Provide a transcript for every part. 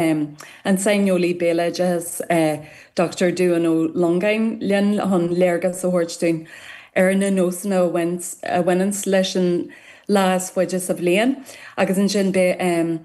an saineolaí béaloideasa Dochtúir Dubhán Ó Longáin linn chun léargas a thabhairt dúinn ar na nósanna a bhaineanns leis an lá is faide sa bhliain agus ansin beidh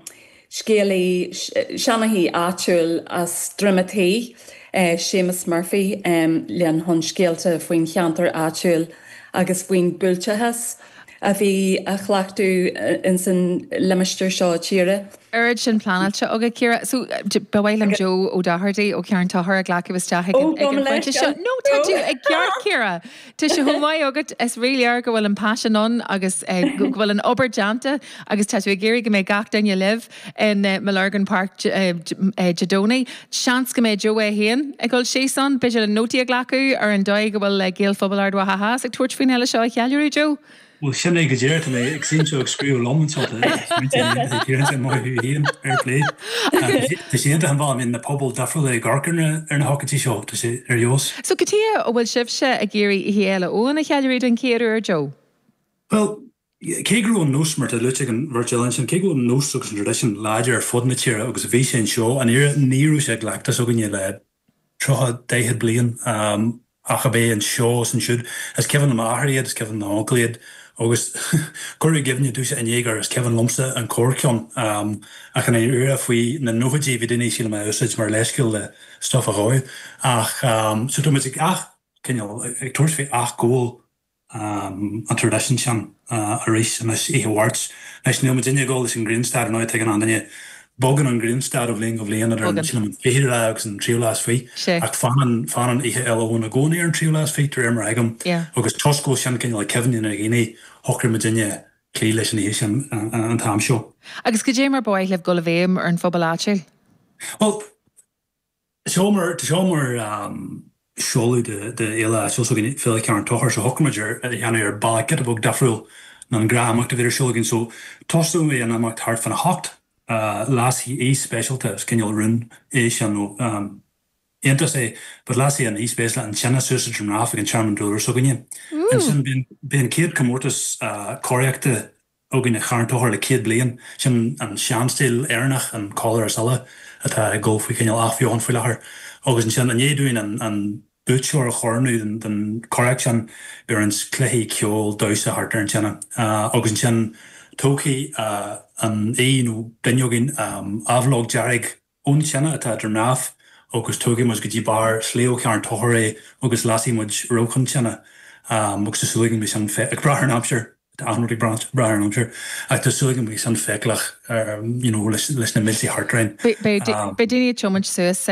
scéalaí seanchaí áitiúil as Droim an Tí, Séamus Murphy linn chun scéalta faoin cheantar áitiúil agus faoin buailteachas, a bhí á chleachtadh ins an limistéar seo tíre. oiread sin pleanáilte agat, Ciara. So, ba mhaith liom Joe Ó Dochartaigh ó Charn Tóchair a ghlacadh isteach ag an phointe seo. Nó tá tú ag gáire, Ciara. Tá sé chomh maith agat, is ríléir go bhfuil an paisean ann agus go bhfuil an obair déanta agus tá tú ag iarraidh go mbeidh gach duine libh. i mBellurgan Park Dé Domhnaigh. Seans go mbeidh Joe é féin ag dul síos ann. B'fhéidir le nótaí a ghlacadh ar an dóigh a bhfuil Gaelphobal Ard Mhacha Theas ag tabhairt faoin fhéile seo a cheiliúradh, Joe? Bhuel, sin é go díreach, tá mé anseo ag scríobh liom anseo de smaointe a dhéanamh ag iarraidh sé maith thú féin, fair play. Tá sé iontach an bealach a mbíonn na pobail difriúla ag amharc ar na hócáidí seo, tá sé ar fheabhas. So cad chuige a bhfuil sibhse ag iarraidh Oíche Fhéile Eoin a cheiliúradh den chéad uair, Joe? Bhuel, Cé go raibh an nós, mar atá luaite ag an bheirt eile ansin, cé go raibh an nós agus an traidisiún láidir ar fud na tíre agus bhí sé anseo i nDoire, ní raibh sé i gcleachtas againne le tríocha, daichead bliain ach ab é anseo is ansiúd. Is cuimhin le m'athair iad, is cuimhin le m'uncail iad agus cuireadh i gcuimhne domhsa an Jaeger, is cuimhin liomsa an corrcheann ach an iarraidh faoi na nóchaidí bhí daoine, sílim, á úsáid mar leithscéal le stuif a dhó ach so tá muid ag ath, cineál, ag tabhairt faoi athghabháil. an traidisiún sin arís anois oíche Mháirt. Anois, níl muidinne ag gabháil leis an grianstad, ar ndóigh, tuigeann achan duine. Bogann an grianstad ó bhliain go bliain idir an, sílim, an fichiú lá agus an tríú lá is fiche. Ach fanann, fanann Oíche Fhéile Eoin i gcónaí ar an tríú lá is fiche, de réir mar a thuigim. Agus toisc go bhfuil sin cineál i gcuimhne na ndaoine, shocraigh muidinne cloí leis an oíche sin an t-am seo. Agus goidé mar ba mhaith libh dul i bhfeidhm ar an phobal áitiúil? Bhuel, Seo mar sheoladh de fhéile áitiúil s'againne, Féile Charn Tóchair, so shocraigh muid é a dhéanamh ar bhealach giota beag difriúil ná an gnáthimeacht a bhíodh ar siúl againn. So, tosóidh an imeacht thart fán a hocht. Lasfaidh aoi speisialta, is cineál rún é sin, nó iontas é, but lasfaidh an aoi speisialta an tine suas i nDroim nDamh ag an Tearmann Dúlra s'againne. Ansin, beidh an chéad comórtas coraíochta againn ar Charn Tóchair le céad bliain. Sin an seanstíl Éireannach, an coiléar is uille, atá ag dul faoi chineál athbheochan faoi láthair. Agus ansin, i ndiaidh dúinn an buaiteoir a chorónú den chomhrac sin, beidh roinnt cluichí, ceol, damhsa thart ar an tine. Agus ansin, tógfaidh an aoi nó duine againn aibhleog dearg an tine atá idir mná agus tógfaidh muid go dtí barr sléibhe Charn Tóchair é agus lasfaidh muid rabhchán tineadh agus tá súil agam go mbeidh sin ag brath ar an aimsir, tá achan rud ag brath ar an aimsir, ach tá súil agam go mbeidh sin feiceálach you know leis na mílte thart orainn. Beidh daoine ag tiomáint suas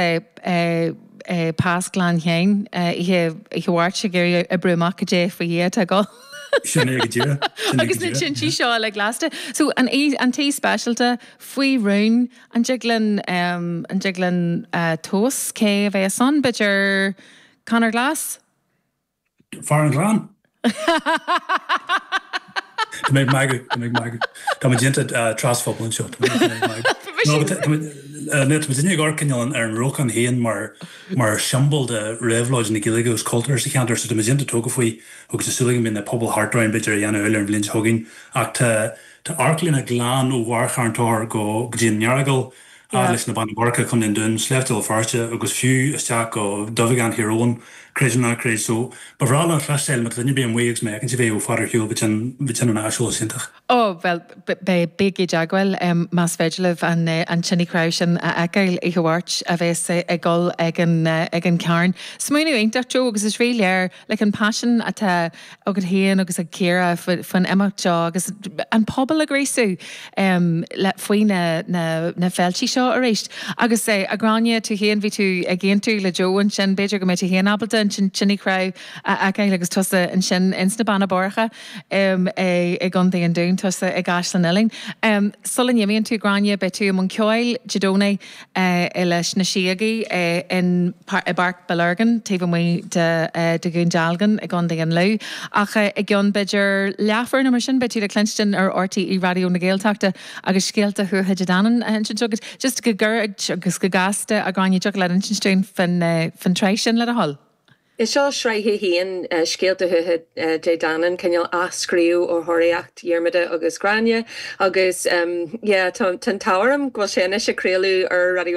Pas Ghleann Sheáin oíche Mháirt ag iarraidh oibriú amach cad é faoi Dhia atá ag. Sin é go díreach. Agus na tintí seo uilig lasta. So an t-aoi speisialta faoi rún. An dtig linn, an dtig linn tomhas cé a bheas ann, b'fhéidir Conor Glass? Fear an ghleann? Tá mé ag magadh, tá mé ag magadh. Tá muid iontach trasphobail anseo, tá mé ag magadh. No, but tá muid, tá muidinne ag amharc anall ar an rabhchán féin mar, mar siombail de réabhlóid na Gaeilge agus cultúir sa cheantar so tá muid iontach tógtha faoi agus tá súil agam go mbeidh na pobail thart orainn b'fhéidir a dhéanamh eile ar an bhliain seo chugainn ach tá, Tá amharclíne glan ó bharr Charn Tóchair go dtí an Earagail, a fhad leis na Beanna Boirche, Co. an Dúin, Sléibhte Bhéal Feirste agus fiú isteach go duibheagán Thír Eoghain, creid nó ná creid. So, ba bhreá linn cloisteáil má tá duine ar bith amuigh agus má fheiceann sibh é ó fad ar shiúl go dtí an an aiseolas iontach. Ó, bhuel, bígí i dteagmháil más féidir libh an tine chnámh sin a fheiceáil oíche Mháirt a bheas ag dul ag an gCarn. Smaoineamh iontach, Joe, agus is rí-léir like an paisean atá. agat féin agus ag Ciara faoin imeacht seo agus an pobal a ghríosú faoi na féiltí seo arís. Agus a Ghráinne, tú féin, bhí tú ag aontú le Joe ansin, b'fhéidir go mbeidh tú féin ábalta an tine chnámh a fheiceáil agus tusa ansin ins na Beanna Boirche i gContae an Dúin, tusa i gCaisleán Uidhilín. Sula n-imíonn tú, Gráinne, beidh tú i mbun ceoil Dé Domhnaigh. i leis na síogaí i bPáirc Bellurgan taobh amuigh de Dhún Dealgan i gContae an Lú. Ach i gceann b'fhéidir leathuair nó mar sin beidh tú le cluinstin ar RTÉ Raidió na Gaeltachta agus scéalta Thuatha Dé Danann á n-insint agat. Just go gairid agus go gasta, a Ghráinne, dtiocfadh leat insint dúinn faoin tsraith sin le do thoil? Is seo sraith a haon, Scéalta Thuatha Dé Danann, cineál athscríobh ar Thóraíocht Dhiarmada agus Ghráinne, agus tá an t-ádh orm go bhfuil sé anois ag craoladh ar Raidió na.